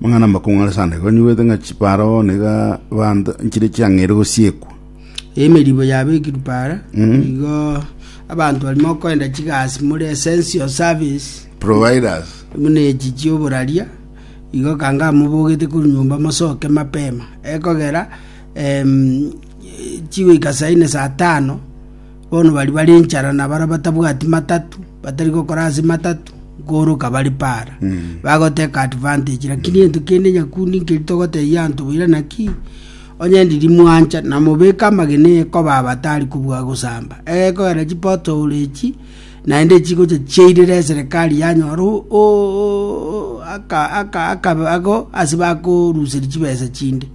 Mang'ana amakong'u are sande igo nigwete ng'a chipara oo niga bande nchire chiang'eire gosiekwa. Emeribo yabekirwe para, igo abanto bari mokoenda chigasi more essential service, Providers. buna echi chioboraria, igo kanga mobogete korwa nyomba mosoke mapema, ekogera em, chigoika saa ine saa tano Bono baria bare inchara na baria batabwati matatu, batari gokora ase matatu, nkooroka bare para. Bagoteka advantage, lakini egento kende nyakundi nkeri togotebia anto boira naki, onye ndiri mwancha na mobeke amagena ekoba abatari kobua gosamba. Egekogera chi pothole echi, naende chigocha chiairera eserekari yanyora o- o- o- aka- aka- aka- ago ase bakoruseria chibesa chinde.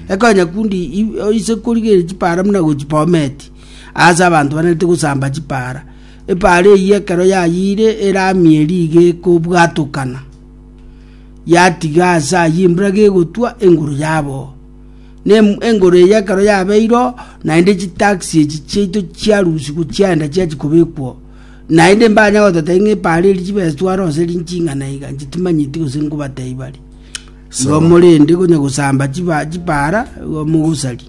Ekoe nyakundi i- ise korigereria chipara buna gochibometi. Aase abanto banerete gosamba chipaara. Epaara eyio ekero yayiire eramia eria iga ekobwatokana, yatiga aase ayio embura gegotwa enguru yaboo. Na em- engoro eyio ekero yabeire oo, naende chitaxi echi chiaito chiarusigwa chiaenda chiachia kobekwa oo. Naende mbanya gototebi ng'a epaara eria chibeswe aro gose ri nching'ana iga, inche timanyeti gose nkobatebia bare. Igo Sawa. morende konya gosamba chiba- chipaara, igo mogosaria.